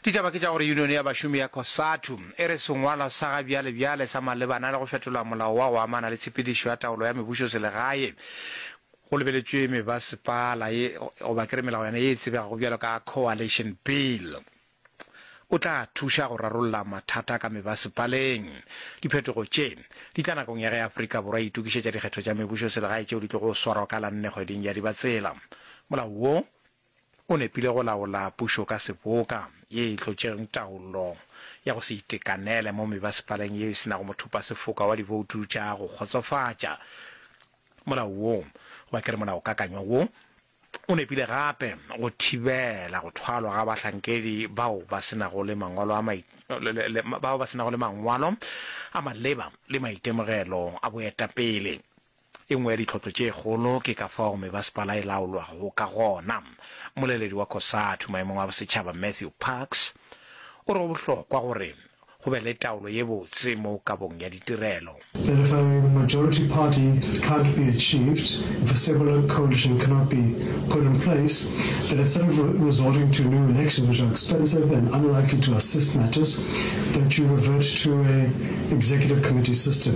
Ditaba ke tša gore Unione ya Bašomi ya Cosatu e re sengwalwa sa ga bjalebjale sa malebana le go fetola molao wa go amana le tshepedišo ya taolo ya mebušoselegae go lebeletšwe mebasepala ye goba ke re melao yona ye e tsebegago bjalo ka Coalition Bill o tla thuša go rarolla mathata ka mebasepaleng. Diphetogo tše di tla nakong ya ge Afrika Borwa e itokišetša dikgetho tša mebušoselegae tšeo di tlogo swarwa ka la nne kgweding ya Dibatsela. Molao wo O nepile go laola pušo ka seboka ye e tlo tšereng taolo ya go se itekanele mo mebasepaleng yeo e se nago mothopasefoka wa diboutu tša go kgotsofatša. Molao wo, goba ke re molaokakanywa wo, o nepile gape go thibela go thwalwa ga bahlankedi bao ba se nago le mangwalo a mai, bao ba se nago le mangwalo a maleba le maitemogelo a boetapele. E nngwe ya ditlhohlo tše kgolo ke ka fao mebasepala e laolwago ka gona. Mmoleledi wa Cosatu maemong a bosetšhaba Matthew Parks o re go bohlokwa gore go be le taolo ye botse mo kabong ya ditirelo. If a majority party can't be achieved, if a stable coalition cannot be put in place, then instead of resorting to new elections which are expensive and unlikely to assist matters, that you revert to a executive committee system.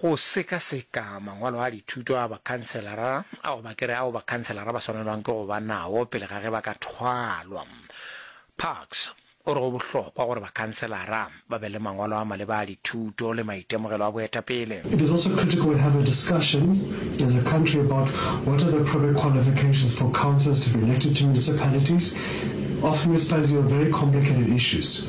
Go sekaseka mangwalo a dithuto a bakhanselara a go ba ke re ao bakhanselara ba swanelwang ke go ba nao pele ga ge ba ka thwalwa. Parks o re go bohlokwa gore bakhanselara ba be le mangwalo a maleba a dithuto le maitemogelo a boetapele. It is also critical we have a discussion as a country about what are the appropriate qualifications for councillors to be elected to municipalities. Off municipalities deal with very complicated issues.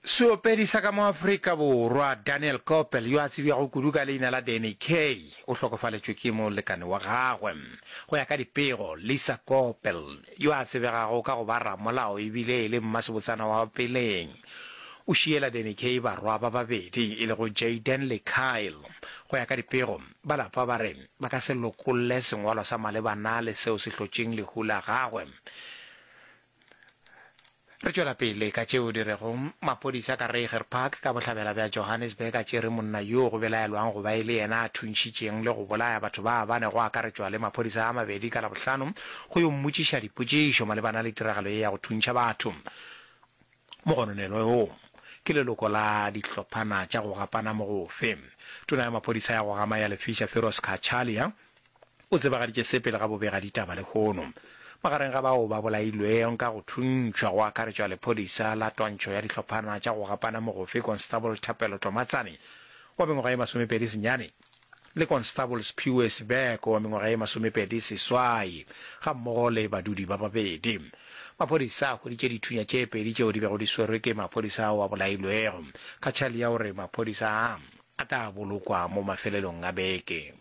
Seopedi sa ka mo Afrika Borwa Daniel Koppel yo a tsebjago kudu ka leina la Danny Kaye o hlokofaletšwe ke molekane wa gagwe. Go ya ka dipego, Lisa Koppel, yo a tsebegago ka go ba ramolao e bile e le mmasebotsana wa peleng, o šiela Danny Kaye barwa ba babedi e lego Jayden le Kyle. Go ya ka dipego, ba lapa ba re ba ka se lokolle sengwalwa sa malebana le seo se hlotšeng lehu la gagwe. Re tšwela pele ka tšeo di rego, Maphodisa ka Reiger Park ka bohlabela bja Johannesburg a tšere monna yoo go belaelwang go ba e le yena a thuntšhitšeng le go bolaya batho ba bane go akaretšwa le maphodisa a mabedi ka Labohlano go yo mmotšiša dipotšišo malebana le tiragalo ye ya go thuntšha batho. Mogononelwa yoo ke leloko la dihlophana tša go gapana mogofe. Tona ya maphodisa ya go gama ya Lefisha Firoz Cachalia, O tsebagaditše se pele ga bobegaditaba lehono. Magareng ga bao ba bolailwego ka go thuntšhwa go akaretšwa lephodisa la twantšho ya dihlophana tša go gapana mogofe Constable Thapelo Tlomatsane wa mengwaga ye masomepedi senyane le Constable Sphiwe Sibeko wa mengwaga ye masomepedi seswai gammogo le badudi ba babedi. Maphodisa a hweditše dithunya tše pedi tšeo di bego di swerwe ke maphodisa ao a bolailwego. Kachali ya o re maphodisa a a tla bolokwa mo mafelelong a beke.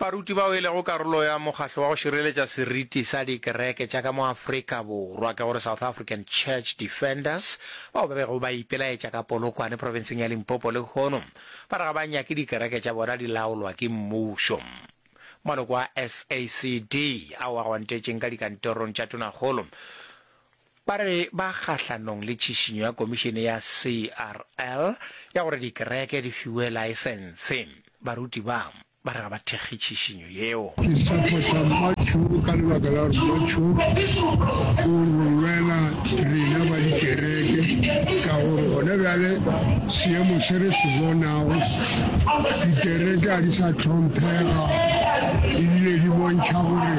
Baruti bao e lego karolo ya Mokgatlo wa go Šireletša Seriti sa Dikereke tša ka mo Afrika Borwa, ke go re South African Church Defenders, bao ba bego ba ipelaetša ka Polokwane profenseng ya Limpopo lehono, ba re ga ba nyake dikereke tša bona di laolwa ke mmušo. Maloko a SACD ao a gwantetšeng ka dikantorong tša tonakgolo Ba re ba kgahlanong le tšhišinyo ya komišene ya CRL ya gore dikereke di fiwe laesense. Baruti ba, ba re ga ba thekge tšhišinyo yeo. Ke sepho sa Matthew ka lebaka la gore Matthew o re lwela rena ba dikereke ka gore gona bjale seemo se re se bonago, dikereke ga di sa hlomphega ebile di bontšha gore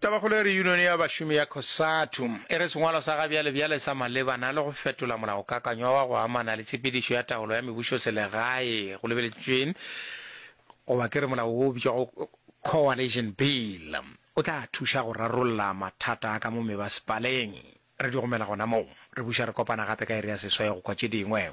Tabakgolo e re Yunione ya Bašomi ya Cosatu e re sengwalo sa gabjalebjale sa malebana le go fetola molaokakanywa wa go amana le tshepedišo ya taolo ya mebušoselegae go lebeletšwe goba ke re molao wo o bitšwago Coalition Bill o tla thuša go rarolla mathata a ka mo mebasepaleng. Re di romela gona moo. Re buša re kopana gape ka iri ya seswai go kwa tše dingwe.